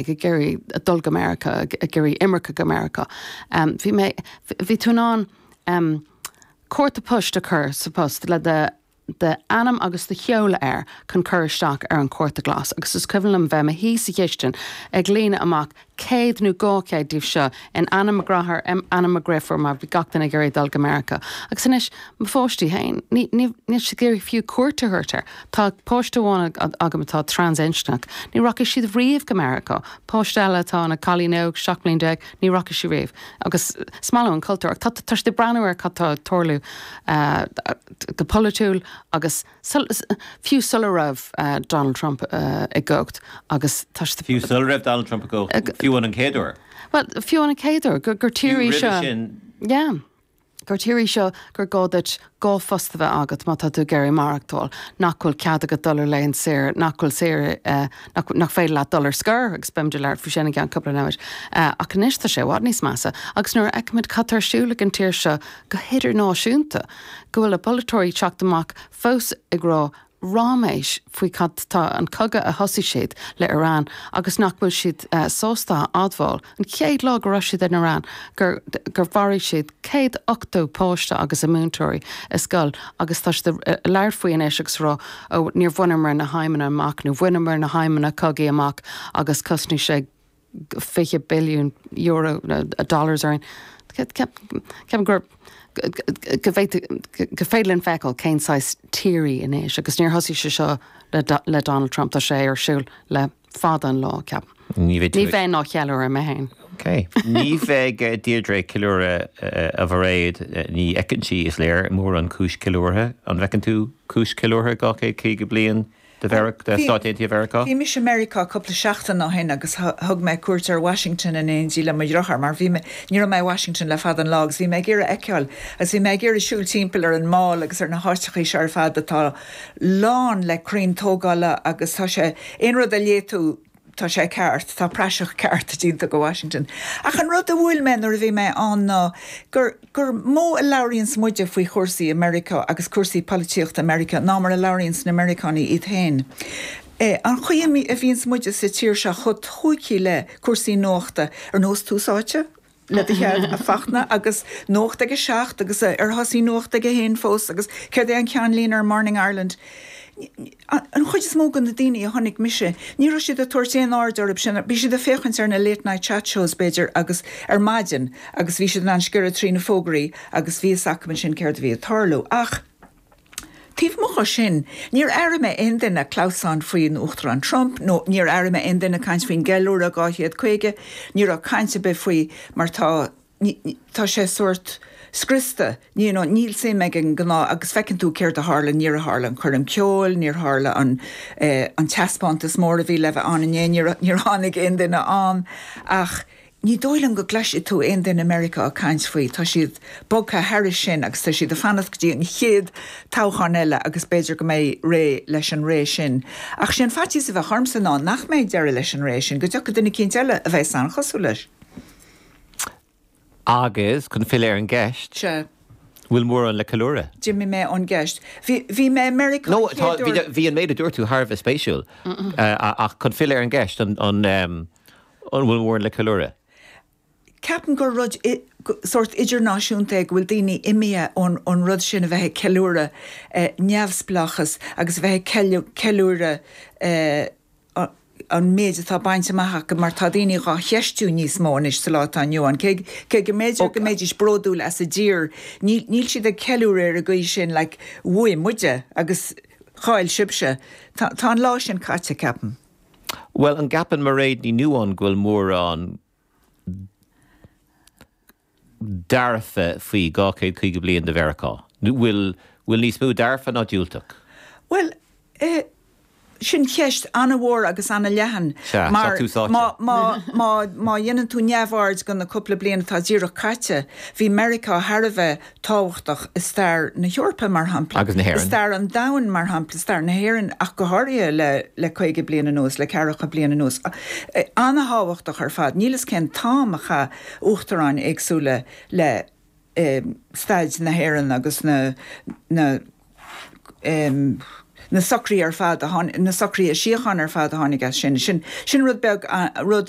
ag iarraidh dul go Meiriceá, ag iarraidh imirce go Meiriceá. Bhí mé, bhí tú in ann cárta poist a chur sa phost le do d'ainm agus do sheoladh air chun cur isteach ar an chárta glas agus is cuimhin liom bheith i mo shuí sa chistin ag líonadh amach céad nó dhá chéad díobh seo in ainm mo dheartháir, in ainm mo dhriofúr mar bhí gach duine ag iarraidh dul go Meiriceá. Agus anois, mo pháistí féin, níl siad ag iarraidh fiú cuairt a thabhairt ar. Tá páiste amháin agam atá transinscneach. Ní rachaidh siad riamh go Meiriceá. Páiste eile atá ina cailín óg, 17 bliain, ní rachaidh sí riamh. Agus is maith leo an cultúr. Ach tá siad ag breathnú ar cad tá ag tarlú go polaitiúil agus fiú sula raibh Donald Trump i gcumhacht. Agus tá siad. Fiú sula raibh Donald Trump i gcumhacht? Fiú an chéad uair? Bhuel, fiú an chéad uair gur tír í seo. Fiú roimhe sin? Yeah. Gur tír í seo gur gá duit dhá phost a bheith agat má tá tú ag iarraidh maireachtáil, nach bhfuil cead agat dul ar laethanta saoire, nach bhfuil saoire, nach, nach féidir leat dul ar scor agus beimid ag labhairt faoi sin i gceann cúpla nóiméid ach anois tá sé i bhfad níos measa agus nuair a fheicimid cad tá ar siúl ag an tír seo go hidirnáisiúnta go bhfuil a bpolaiteoirí ag teacht amach fós ag rá ráiméis faoi cad é an cogadh a thosaigh siad le Iran agus nach bhfuil siad sástá admháil an chéad lá go raibh siad in Iran gur gur mharaigh siad céad ochtó páiste agus a múinteoirí i scoil agus tá siad ag labhairt faoi anois agus ag rá ó níor bhaineamar na haidhmeanna amach nó bhaineamar na haidhmeanna cogaidh amach agus chosnaigh sé 20 billiún dollars orainn. Ceapaim gur féidir linn feiceáil cén saghas tír í anois agus níor thosaigh sé seo le Donald Trump, tá sé ar siúl le fada an lá, ceapaim. Ní bheidh tú. Ní bheinn á cheiliúradh mé féin. Ok. Ní bheidh Deirdre ag ceiliúradh a Mhairéad, ní fheiceann sí, is léir, mórán cúis ceiliúrtha. An bhfeiceann tú cúis ceiliúrtha, 250 bliain? de Mheiriceá, de Stáit Aontaithe Mheiriceá. Bhí mise i Meiriceá cúpla seachtain ó shin agus thug mé cuairt ar Washington in éindí le mo dhriotháir mar bhí mé, ní raibh mé i Washington le fada an lá agus bhí mé ag iarraidh a fheiceáil agus bhí mé ag iarraidh siúl timpeall ar an Mall agus ar na háiteachaí seo ar fad atá lán le crainn tógála agus tá sé, aon rud a léigh tú. Tá sé ceart, tá praiseach ceart déanta de Washington. Ach an rud a bhuail mé nuair a bhí mé ann ná gur gur mó a labhraíonns muide faoi chúrsaí i Meiriceá agus cúrsaí polaitíochta i Meiriceá ná mar a labhraíonns na Meiriceánaigh iad féin. An chaoi a bhíonns muide sa tír seo chomh tóigthe le cúrsaí nuachta ar nós Tús Áite, le do chead, a Fhachtna, agus Nuacht ag a seacht, agus ar thosaigh Nuacht ag a haon fós, agus céard é an ceannlíne ar Morning Ireland? An chuid is mó de na daoine a chonaic mise, ní raibh siad ag tabhairt aon aird orthu sin, bhí siad ag féachaint ar na late night chat shows, b'fhéidir, agus ar maidin, agus bhí siad in ann sciorradh trí na fógraí agus bhí fhios acu ansin céard a bhí ag tarlú. Ach. Taobh amuigh ó sin, níor airigh mé aon duine clamhsán faoin Uachtarán Trump nó níor airigh mé aon duine caint faoin gCeiliúradh 250, ní raibh caint ar bith faoi mar tá, tá sé sórt scriosta, you know, níl suim ag an ngnáth, agus feiceann tú céard a tharla, níor tharla an coirm ceoil, níor tharla an, eh, an teaspántas mór a bhí le bheith ann inné, níor, níor tháinig aon duine ann ach, Ní dóigh liom go gcloisfidh tú aon duine i Meiriceá ag caint faoi. Tá siad bogtha thairis sin agus tá siad ag fanacht go dtí an chéad toghchán eile agus b'fhéidir go mbeidh siad réidh leis an ré sin. Ach sé an faitíos a bheadh ormsa ná nach mbeidh deireadh leis an ré sin, go dtiocfaidh duine eicínt eile a bheas an-chosúil leis. Agus, chun filleadh ar an gceist, Sea. an bhfuil mórán le ceiliúradh? D'imigh mé ón gceist. Bhí an méid a dúirt tú thar a bheith spéisiúil. Ach chun filleadh ar an gceist, an. An bhfuil mórán le ceiliúradh? Ceapaim gur rud sórt idirnáisiúnta é go bhfuil daoine imithe ón rud sin a bheith ag ceiliúradh neamhspleáchas agus a bheith ag ceiliúradh an méid atá bainte amach acu mar tá daoine dhá cheistiú níos mó anois sa lá atá inniu ann. Cé, cé go mb'fhéidir go mbeidís bródúil as a dtír níl siad ag ceiliúradh ar an gcaoi sin like bhuaigh muide agus chaill sibhse. Tá an lá sin caite ceapaim. Bhuel, an gceapann Mairéad Ní Nuadháin go bhfuil mórán dearfa faoi 250 bliain de Mheiriceá? Nó bhfuil bhfuil níos mó dearfa ná diúltach? Bhuel, eh, sin ceist an-mhór agus an-leathan Sea, tá mar tú sáite. má, má, má, má dhéanann tú neamhaird de na cúpla bliain atá díreach caite, bhí Meiriceá thar a bheith tábhachtach i stair na hEorpa, mar shampla, i stair an domhain, mar shampla, i stair na hÉireann ach go háirithe le caoga bliain anuas, le ceathracha bliain anuas. An-tábhachtach ar fad. Níl a fhios cén t-am a chaith uachtaráin éagsúla le staid na hÉireann agus na, na, na socruithe ar fad, na socruithe síochána ar fad a tháinig as sin. Sin, sin rud beag, rud